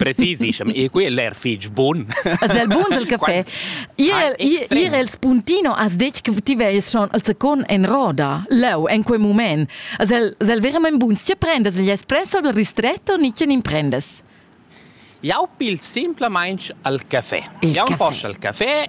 Precisissem, e quel er fitg bun. Es el bun del caffè. Ir el spuntino as detg che ti veies schon al secon en roda, leu, en quei moment. Es el, es el verament bun? Tia prendas gli espresso al ristretto, nice nin prendes? Jau pil simplamain al caffè. Il Jau post al caffè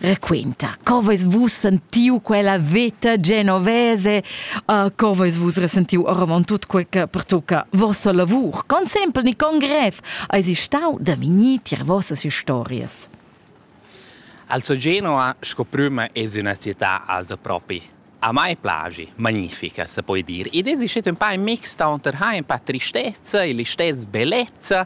Raquenta, co vais vus sentiu quella veta genovese, uh, co vais vus resentiu oravant tut quei che pertucca vossa lavur? Con sempel ni con grev eis stau da vinir tier vossas historias? Also Genova sco prüma es üna città als propi A mai plagi, magnifica se poi dir. Id es ischet ün pa in mix taunter ha ün pa tristezza e l'istess bellezza.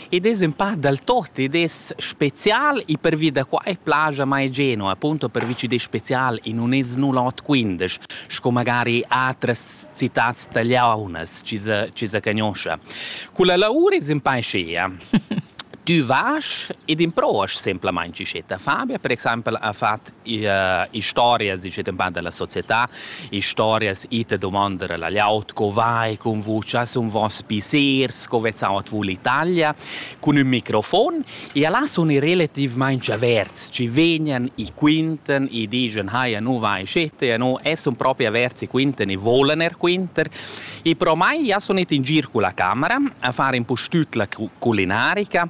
Id es ün pa dal tot, id es special e pervi da quai plaja mai genua, appunto pervi ch'id es special e nun es nu l'ot quindesch, sco magari atras citats tagliaunas chi sa chi sa cagnoscha. Culla laur es ün pa schea. Tü vas ed improast semplamaing, chi schet. Fabia per exaimpel ha fat historias ich dem band della società historias ite domandere la laut co vai con voce un vos pisers co vezzavat vu l'Italia con un microfon e là sono relativamente averts ci vegnan i quinten i digen haja nu vai scete no es un proprio averts i quinten i volen er quinter e pro mai ja sono in gir con la camera a fare un po' tut la culinarica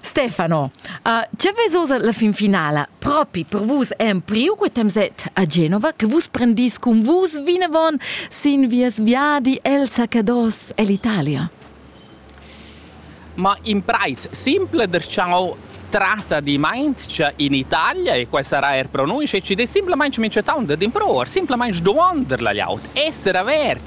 Stefano, uh, ce vesosa la fin finala? Propi per vus empriu quei temset a Genova che vus prendis cun vus vinavon sin vies viadi el Sacados ell'Italia? Ma in price simple der ciao tratta di maincia in Italia e questa sarà er pronuncia e ci de simplemente mi c'è taunt d'improvar, simplemente domandar la laut, essere avert,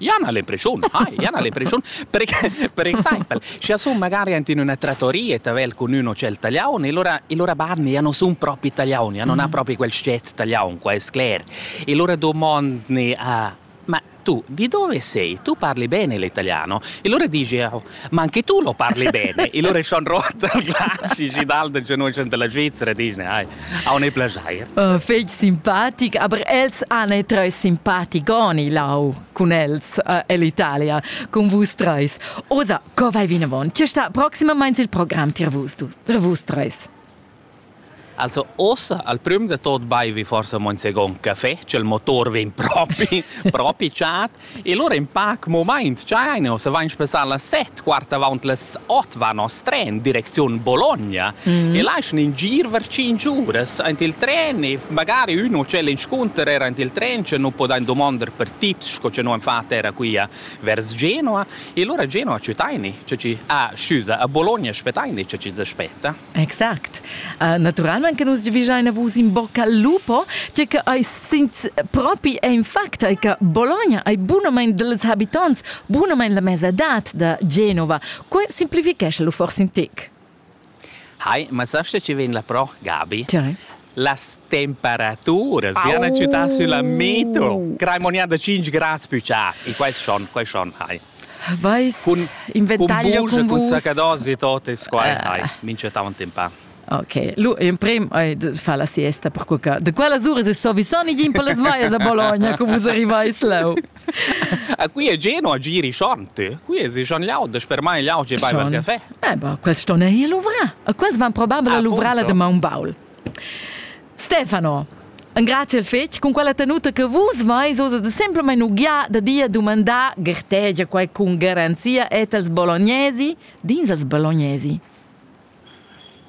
Jan ha l'impreschiun, hai, Jan ha l'impreschiun, per, per exempel, scha sun magari ant in üna trattoria e t'avel cun ün hotel taliaun e lura, e lura barni ja non sun propi taliaun, ja non ha propi quel sciet taliaun, qua es cler. E lura domandni a ma tu di dove sei? Tu parli bene l'italiano? E lura disch eu, Ma anche tu lo parli bene. Il ore schon rot al glaci gidal de genogen della Svizzera dice, ai, a un plagiair. Uh, feg simpatic, aber els han e tre simpaticoni lau cun els uh,ell'Italia, con vus treis. Osa, co vai vinavon? Ce sta proximamente il programm tir vus, tu, tra vus treis? Also ossa al prüm de tot baivi forsa mon second café, ch'el motor vegn propi propi chat e lura in pac momaint chaine ossa vain spessà las set quart avant las ot van nos tren direcziun Bologna mm. e laschan in gir vers cinc uras aint il tren e magari ün hotel inscunter era aint il tren che nu podain domonder per tips sco che nu han fat era qui a vers Genoa e lura a Genoa citaini che ci a scusa a Bologna aspetaini che ci s'aspetta Exact. Uh, naturalment che nus giavischein a vus in bocca lupo, tge che ei sinz propi è in fact è che Bologna è bunament dels habitants, bunament la mesadat da Genova. Que simplifichesce lu forse in tic. Hai, ma sasce ci vien la pro, Gabi? Cioè? las temperaturas Au. siano città sulla metro, crai monia da 5 gradi più c'ha, e questo schon, questo schon, hai. Vais cun inventaglio cun vus. Cun sacados e tot es qua. Hai, mincha tant in pa. Ok, lu emprem hai de far la siesta per qualche. De quella sura se sto visoni gin per las vaias a Bologna, co vus arrivais leu. A qui è Geno a giri schont? Qui è si schon laudes per mai laudes e baiva il caffè. Eh, bah, quels ston er hier luvra. A quels van probabile a luvra la de Maun Baul. Stefano, Grazie fetg cun quella tenuta che vus vais oz da semplamain uglià da dir dumandar gertegia quai cun garanzia et als bolognesi, dins als bolognesi.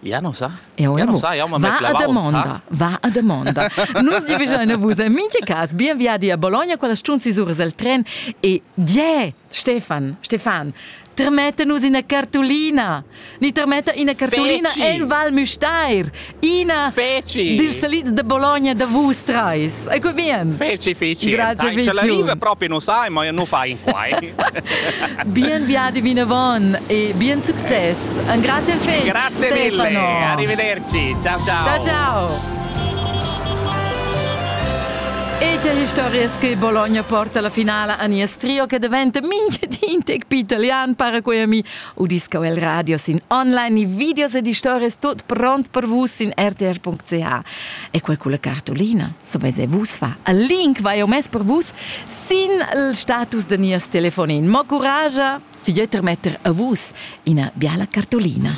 Ja non sa. Ja, ja non sa, ja, va a domanda, va a domanda. Nus vi bisogna vus en minche cas bien viadi a Bologna, quella stun si suras al tren e die Stefan, Stefan, termetta nus ina cartulina. Ni termetta ina cartulina Feci. en Val Müstair. Ina Feci. dils salits de Bologna da vus treis. Ecco bien. Feci, feci. Grazie, Dai, Feci. Ce l'arriva proprio non sai, ma non fai in quai. Bien viadi vinavon e bien succes. Un grazie al Feci. Grazie mille. Stefano. Arrivederci. Ciao ciao. Ciao ciao. Ecce historias che Bologna porta alla finale a nies trio che diventa minchedin tec più italian para quei a mi udisca el radio sin online i videos ed historias tot pront per vus in rtr.ch e quel con la cartolina so vese vus fa a link vai o mes per vus sin il status de nies telefonin mo coragia figlietter metter a vus ina biala cartolina